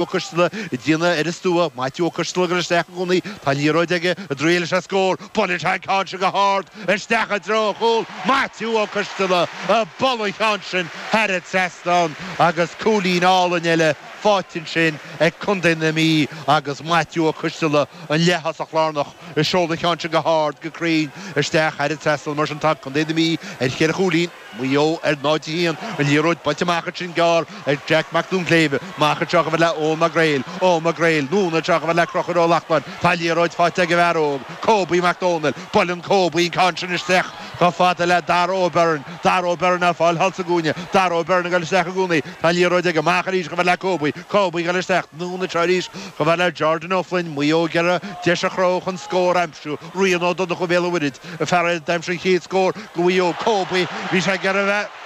Ó Coistealla, ag déanamh ar an stua, Maitiú Ó Coistealla ag dul isteach i gcónaí tá an liathróid aige, an dtriailfidh sé scór, buaileann sé an ceann sin go hard isteach i dtreo an chúil, Maitiú Ó Coistealla ag bualadh an cheann sin thar an trasnán agus cúilín álainn eile faighte ansin ag Contae na Mí agus Maitiú Ó Coistealla an leath-thosach lárnach ag seoladh an cheann sin go hard go cruinn isteach thar an trasnán mar sin tá Contae na Mí ar cheithre chúilín Mhaigh Eo, ar 0, 1. An liathróid buailte amach ansin gearr ag Jack Mac Donnshléibhe. Amach anseo chomh fada le Eoghan Mac Gréil. Eoghan Mac Gréil. Anonn anseo chomh fada le Conchúr Ó Lachtnáin. Tá an liathróid faighte ag an bhfear óg, Kobe Mac Dónaill. Buaileann Kobe an ceann sin isteach chomh fada le Dara Ó Beirn. Dara Ó Beirn ar fáil thall sa gcúinne. Dara Ó Beirn ag dul isteach i gcónaí. Tá an liathróid aige. Amach arís chomh fada le Kobe. Kobe ag dul isteach. Anonn anseo arís chomh fada le Jordan Ó Floinn. Maigh Eo ag iarraidh deis a chruthú chun scór a aimsiú. Rian Ó Donnchú ó Bhéal an Mhuirthead, an fear a d'aimsigh an chéad scór do Mhaigh Eo, Kobe. Bhí sé ag iarraidh a bheith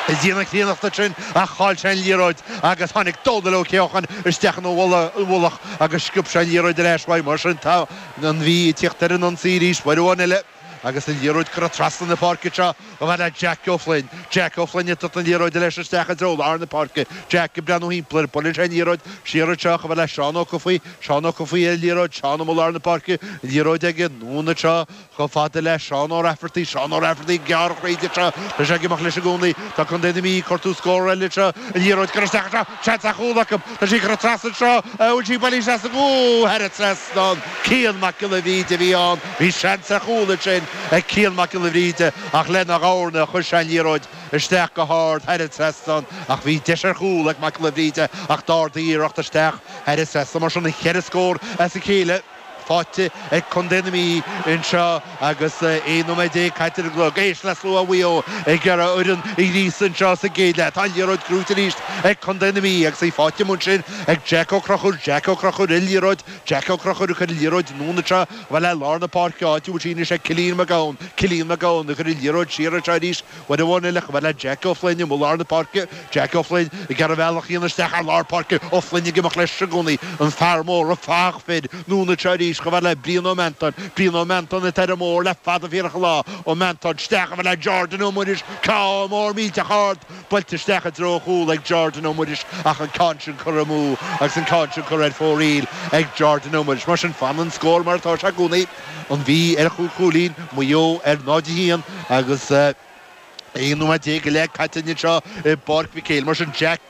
ag déanamh an chríonnachta sin ach chaill sé an liathróid agus tháinig Dónal Ó Ceocháin isteach ina mhullach agus sciob sé an liathróid ar ais uaidh. Mar sin tá an Mhí ag tíocht ar an ionsaí arís, uair amháin eile agus an liathróid curtha trasna na páirce seo. Chomh fada le Jack Ó Floinn, Jack Ó Floinn, ag tabhairt na liathróide leis isteach i dtreo lár na páirce. Jack ag breathnú thimpeall air, buaileann sé an liathróid, siar anseo, chomh fada le Seán Ó Cofaigh, Seán Ó Cofaigh ar an liathróid, Seán amuigh i lár na páirce, an liathróid aige, anonn anseo, chomh fada le Seán Ó Raifeartaigh, Seán Ó Raifeartaigh ag gearradh tríd anseo, tá sé ag imeacht leis i gcónaí, tá Contae na Mí ag cuartú scór eile anseo, an liathróid curtha isteach anseo, Seans ar chúl acu. Tá sí curtha trasna anseo. An bhfuil sí bailithe isteach? Úúú! Thar an trasnán. Cian Mac Giolla Bhríde a bhí ann. Bhí seans ar chúl ansin ag Cian Mac Giolla Bhríde ach lena dhorna chuir sé an liathróid isteach go hard thar an trasnán ach bhí deis ar chúl ag Mac Giolla Bhríde ach d'ardaigh a iarracht isteach thar an trasnán mar sin cheithre scór as a chéile. faighte ag Contae na Mí anseo agus 11 nóiméad caite ar an gclog. Éist le slua Mhaigh Eo ag iarraidh an fhoireann a ghríosadh anseo sa gcéad leath. Tá an liathróid gnóite arís ag Contae na Mí agus í faighte amuigh ansin ag Jack Ó Conchúir. Jack Ó Conchúir ar an liathróid. Jack Ó Conchúir ag cur an liathróid anonn anseo, chomh fada le lár na páirce, áit a bhfuil sí anois ag Cillian Mac Gabhann. Cillian Mac Gabhann ag cur an liathróid siar anseo arís. Uair amháin eile, chomh fada le Jack Ó Floinn amuigh i lár na páirce, Jack Ó Floinn ag iarraidh a bhealach a dhéanamh isteach thar lár páirce, Ó Floinn ag imeacht leis i gcónaí, an fear mór, an fathach fir, anonn anseo arís, chomh fada le Brian Ó Meantáin, Brian Ó Meantáin atá ar an mbóthar le fada fíorach an lá, Ó Meantáin isteach, chomh fada le Jordan Ó Muiris, ceann mór millteach ard, buailte isteach i dtreo an chúil ag Jordan Ó Muiris ach an ceann sin curtha amú agus an ceann sin curtha ar fóraoil ag Jordan Ó Muiris. Mar sin, fanann an scór mar atá sé i gcónaí. an Mhí ar chúig chúilín Mhaigh Eo ar 0, 1 agus 11 nóiméad go leith caite anseo i bPáirc Mhic Éil. Mar sin, Jack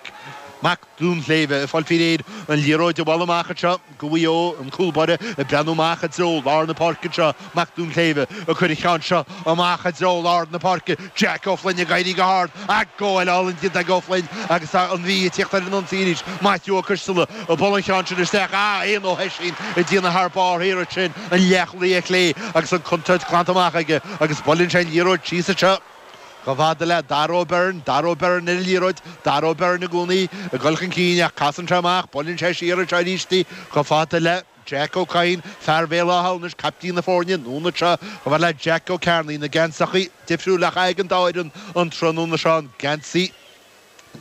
Mac Donnshléibhe ag fáil faoi réir an liathróid a bhualadh amach anseo do Mhaigh Eo. An cúlbáire ag breathnú amach i dtreo lár na páirce anseo, Mac Donnshléibhe ag cur an cheann seo amach i dtreo lár na páirce. Jack Ó Floinn ag éirí go hard, ach gabháil álainn déanta ag Ó Floinn agus tá an Mhí ag tíocht ar an ionsaí arís, Maitiú Ó Coistealla ag bualadh an cheann sin isteach, ach Éanna Ó hOisín ag déanamh thar barr thiar ansin, an leathchúlaí clé agus an chontúirt glanta amach aige agus buaileann sé an liathróid síos anseo chomh fada le Dara Ó Beirn, Dara Ó Beirn ar an liathróid, Dara Ó Beirn i gcónaí ag dul chun cinn ach casann sé amach, buaileann sé siar anseo arís chomh fada le. Jack Ó Cadhain, fear Bhéal Átha hAmhnais, caiptín na foirne anonn anseo chomh fada le Jack Ó Cearnaigh. Na geansachaí difriúla á chaitheamh ag an dá fhoireann an tráthnóna seo, an geansaí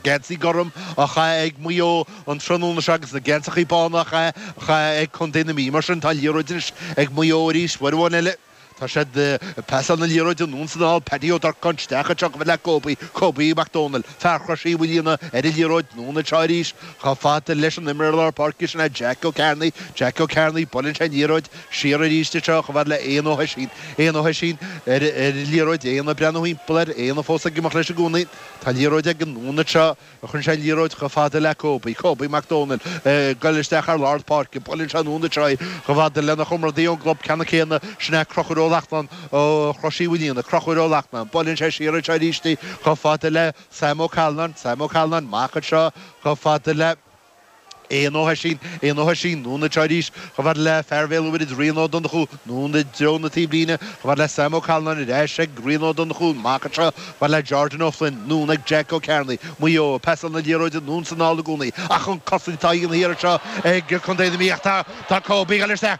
geansaí gorm á chaitheamh ag Maigh Eo an tráthnóna seo agus na geansachaí bána á chaitheamh á chaitheamh ag Contae na Mí. Mar sin tá an liathróid anois ag Maigh Eo arís, uair amháin eile. Tá siad ag pasáil na liathróide anonn is anall, Paddy Ó Durcáin, isteach anseo chomh fada le Kobe, Kobe Mac Dónaill, fear Chrois Uí Mhaoilíona, ar an liathróid anonn anseo arís. Chomh fada leis an imreoir lár páirce sin é Jack Ó Cearnaigh, Jack Ó Cearnaigh, buaileann sé an liathróid siar arís anseo chomh fada le Éanna Ó hOisín, Éanna Ó hOisín ar an liathróid, Éanna ag breathnú thimpeall air, Éanna fós ag imeacht leis i gcónaí. Tá an liathróid aige, anonn anseo. Cuireann sé an liathróid chomh fada le Kobe, Kobe Mac Dónaill, ag goil isteach thar lár páirce. Buaileann sé anonn anseo í, chomh fada lena chomradaí ón gclub ceannann céanna, sin é Crochúr Ó Lachtnáin ó Chrois Uí Mhaoilíona, Crochúr Ó Lachtnáin. Buaileann sé siar anseo arís í, chomh fada le Sam Ó Callanáin, Sam Ó Callanáin, amach anseo, chomh fada le. Éanna Ó hOisín, Éanna Ó hOisín, anonn anseo arís, chomh fada le fear Bhéal an Mhuirthead, Rian Ó Donnchú, anonn i dtreo na taobhlíne, chomh fada le Sam Ó Callanáin ar ais ag Rian Ó Donnchú, amach anseo, chomh fada le Jordan Ó Floinn, anonn ag Jeaic Ó Cearnaigh, Maigh Eo ag pasáil na liathróide anonn is anall i gcónaí, ach an-chosaint á dhéanamh thiar anseo ag Co. na Mí, ach tá, tá Kobe ag goil isteach.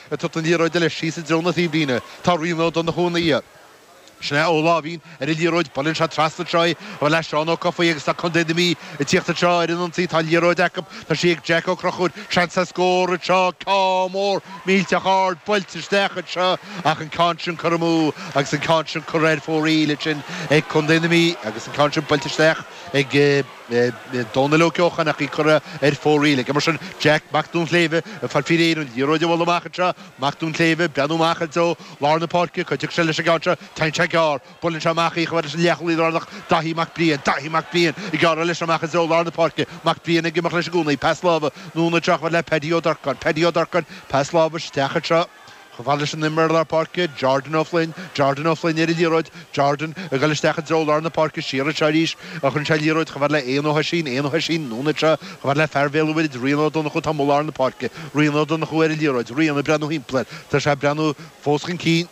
Ag tabhairt na liathróide leis síos i dtreo na taobhlíne, tá Rian Ó Donnchú ina dhiaidh, sin é Ó Láimhín ar an liathróid, buaileann sé trasna anseo í chomh fada le Seán Ó Cofaigh agus tá Contae na Mí ag tíocht anseo ar an ionsaí, tá an liathróid acu, tá sí ag Jack Ó Crochúir, seans le scór anseo, ceann mór millteach ard buailte isteach anseo ach an ceann sin curtha amú agus an ceann sin curtha ar fóraoil ansin ag Contae na Mí agus an ceann sin buailte isteach ag Dónall Ó Ceocháin ach í curtha ar fóraoil aige. Mar sin, Jeaic Mac Duinnshléibhe ag fáil faoi réir an liathróid a bhualadh amach anseo, Mac Duinnshléibhe ag breathnú amach i dtreo lár na páirce, cá dtiocfaidh sé leis an gceann seo, téann sé gearr, buaileann sé amach í chomh fada leis an leathchúlaí lárnach, Dáithí Mac Briain, Dáithí Mac Briain ag gearradh leis amach i dtreo lár na páirce, Mac Briain ag imeacht leis i gcónaí, pas láimhe, anonn anseo chomh fada le Paddy Ó Durcáin, Paddy Ó Durcáin, pas láimhe isteach anseo. Chomh fada leis an imreoir lár páirce, Jordan Ó Floinn, Jordan Ó Floinn ar an liathróid, Jordan ag dul isteach i dtreo lár na páirce, siar anseo arís, a chuireann sé an liathróid chomh fada le Éanna Ó hOisín, Éanna Ó hOisín, anonn anseo chomh fada le fear Bhéal an Mhuirthead, Rian Ó Donnchú, tá amuigh i lár na páirce, Rian Ó Donnchú ar an liathróid, Rian ag breathnú thimpeall air, tá sé ag breathnú fós chun cinn,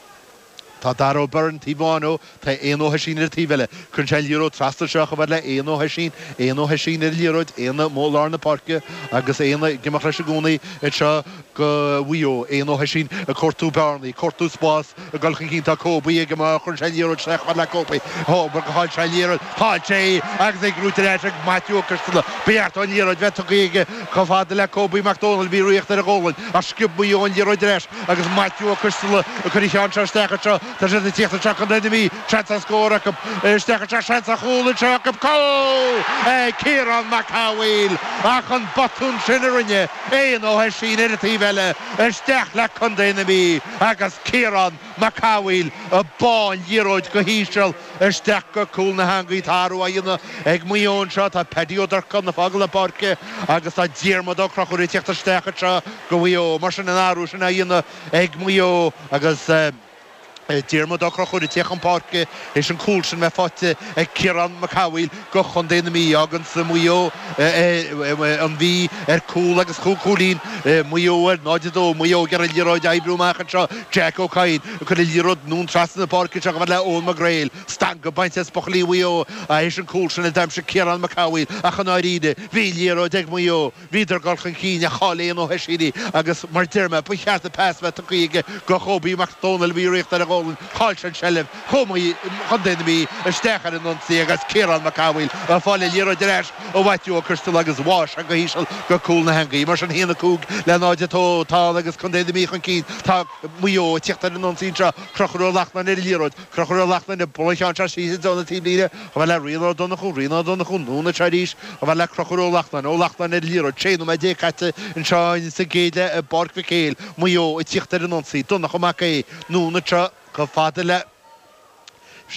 Tá Dara Ó Beirn taobh amháin dó, tá Éanna Ó hOisín ar an taobh eile. Cuireann sé an liathróid trasna anseo chomh fada le Éanna Ó hOisín, Éanna Ó hOisín ar an liathróid, Éanna amuigh i lár na páirce agus Éanna ag imeacht leis i gcónaí anseo go Mhaigh Eo, Éanna Ó hOisín ag cuartú bearnaí, ag cuartú spás, ag dul chun cinn, tá Cóbie aige má chuireann sé an liathróid isteach chomh fada le Cóbie, dóbair gur chaill sé an liathróid, chaill sé í agus í gnóthaithe ar ais ag Maitiú Ó Coistealla. Ba cheart dó an liathróid a bheith tugtha aige chomh fada le Cóbie Mac Domhnaill, a bhí ag ritheacht ar a ghualainn ach sciob Maigh Eo an liathróid ar ais. Agus Maitiú Ó Coistealla ag cur an ceann seo isteach anseo, tá siad ag tíocht anseo Contae na Mí, seans ar scór acu. Isteach anseo, seans ar chúl anseo acu, cúl ag Ciarán Mac Cathmhaoil ach an botún sin a rinne Éanna Ó hOisín ar an taobh eile, isteach le contae na Mí agus Ciarán Mac Cathmhaoil ag bá an liathróid go híseal. Isteach go cúl na heangaí tá athrú á dhéanamh ag Maigh Eo anseo, tá Peaidí Ó Durcáin ag fágáil na páirce agus tá Diarmaid Ó Conchúir ag tíocht isteach anseo go Mhaigh Eo. Mar sin an athrú sin á dhéanamh ag Maigh Eo agus Diarmaid Ó Conchúir ag tíocht chun páirce, tar éis an cúl sin a bheith faighte ag Ciarán Mac Cathmhaoil. go Chontae na Mí, fágann sé Maigh Eo, an Mhí, ar cúl agus cúig chúilín, Maigh Eo, ar 0, 2. Maigh Eo ag iarraidh an liathróid a oibriú amach anseo, Jack Ó Cadhain ag cur an liathróid anonn trasna na páirce anseo chomh fada le Eoghan Mac Gréil. Stangadh bainte as buachaillí Mhaigh Eo tar éis an cúl sin a d'aimsigh Ciarán Mac Cathmhaoil ach i ndáiríre, bhí an liathróid ag Maigh Eo. Bhíodar ag dul chun cinn, ach chaill Éanna Ó hOisín í, agus, mar a deir mé, ba cheart an pas a bheith tugthaí aige go Chóbie Mac Dónaill a bhí ag ritheacht ar a ghualainn chaill sé an tseilbh, chuaigh an Mhí, Contae na Mí isteach ar an ionsaí agus Ciarán Mac Cathmhaoil ag fáil an liathróid ar ais ó Mhaitiú Ó Coistealla agus bháigh sé go híseal go cúl na heangaí. Mar sin 1, 5 le 0, 2 atá ann agus Contae na Mí chun cinn. Tá Maigh Eo ag tíocht ar an ionsaí anseo, Conchúr Ó Lachtnáin ar an liathróid, Conchúr Ó Lachtnáin ag bualadh an ceann seo síos i dtreo na taobhlíne, chomh fada le Rian Ó Donnchú, Rian Ó Donnchú, anonn anseo arís, chomh fada le Conchúr Ó Lachtnáin, Ó Lachtnáin ar an liathróid, 16 nóiméad caite anseo in sa gcéad leath i bPáirc Mhic Éil, Maigh Eo ag tíocht ar an ionsaí, Donncha Mac Aoidh, anonn anseo chomh fada leis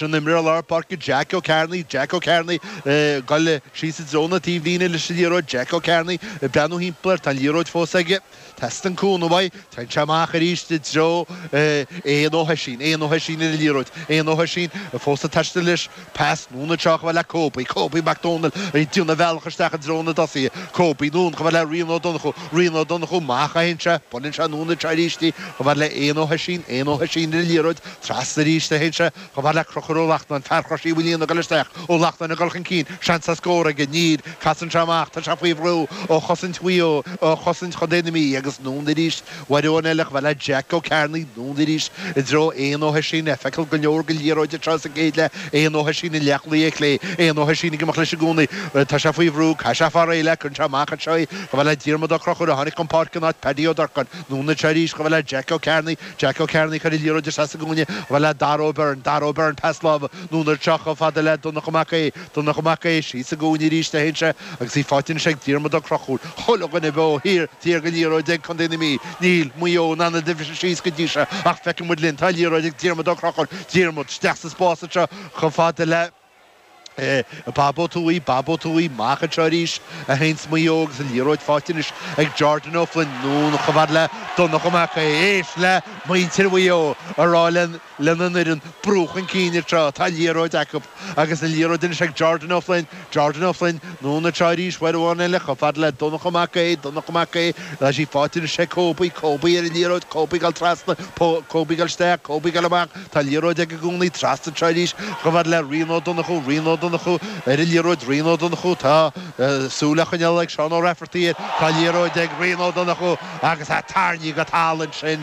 an imreoir lár páirce Jeaic Ó Cearnaigh, Jeaic Ó Cearnaigh ag dul síos i dtreo na taobhlíne leis an liathróid, Jeaic Ó Cearnaigh ag breathnú thimpeall air, tá an liathróid fós aige. Teastaíonn cúnamh uaidh. Téann sé amach arís i dtreo Éanna Ó hOisín. Éanna Ó hOisín ar an liathróid. Éanna Ó hOisín fós ag taisteal leis. Pas anonn anseo chomh fada le Coby. Coby Mac Domhnaill ag déanamh a bhealach isteach i dtreo na dtosaithe. Coby anonn chomh fada le Rian Ó Donnchú. Rian Ó Donnchú amach a théann sé. Buaileann sé anonn anseo aríst í chomh fada le Éanna Ó hOisín. Éanna Ó hOisín ar an liathróid. Trasna arís a théann sé. Chomh fada le Conchúr Ó Lachtnáin, Fear Chrois Uí Mhaoilíona ag dul isteach, Ó Lachtnáin ag dul chun cinn, seans ar scór aige, níl, casann sé amach, tá sé faoi bhrú ó chosaint Mhaigh Eo, ó chosaint chontae na Mí agus anonn arís uair amháin eile chomh fada le Jeaic Ó Cearnaigh, anonn arís i dtreo Éanna Ó hOisín, é ag feiceáil go leor den liathróid anseo sa gcéad leath, Éanna Ó hOisín an leathchúlaí clé, Éanna Ó hOisín ag imeacht leis i gcónaí, tá sé faoi bhrú, caithfidh sé fáil réidh léi, cuireann sé amach anseo í chomh fada le Diarmaid Ó Conchúir a tháinig chun páirce in áit Paddy Ó Durcáin, anonn anseo arís chomh fada le Jeaic Ó Cearnaigh, Jack Ó Cearnaigh, cuir sé an liathróid isteach sa gcúinne, chomh fada le Dara Ó Beirn, Dara Ó Beirn, pas láimhe, anonn anseo chomh fada le Donncha Mac Aoidh, Donncha Mac Aoidh, síos sa gcúinne arís a théann sé agus í faighte anois ag Diarmaid Ó Crochúir, chuile dhuine beo thiar, thiar den liathróid ag Contae na Mí, níl Maigh Eo in ann iad a bhriseadh síos go dtí seo ach feicfidh muid linn, tá an liathróid ag Diarmaid Ó Crochúir, Diarmaid, isteach sa spás anseo chomh fada le. Eh, Bob Ó Tuathaigh, Bob Ó Tuathaigh, amach anseo arís a théanns Maigh Eo agus an liathróid faighte anois ag Jordan Ó Floinn, anonn chomh fada le Donncha Mac Aodha, éist le muintir Mhaigh Eo a rá lena n-imreoirí, brú chun cinn a deir siad, tá an liathróid acu agus an liathróid anois ag Jordan Ó Floinn, Jordan Ó Floinn, anonn a théanns arís, uair amháin eile chomh fada le Donncha Mac Aodha, Donncha Mac Aodha, tá sí faighte anois ag Cobie, Cobie ar an liathróid, Cobie ag goil trasna, Cobie ag goil isteach, Cobie ag goil amach, Tá an liathróid aige i gcónaí trasna anseo arís chomh fada le Rian Ó Donnchú, Rian Ó Donnchú, ar an liathróid, Rian Ó Donnchú, tá súil á coinneáil ag Seán Ó Rafferty air, tá an liathróid ag Rian Ó Donnchú agus é tarraingthe go talamh ansin.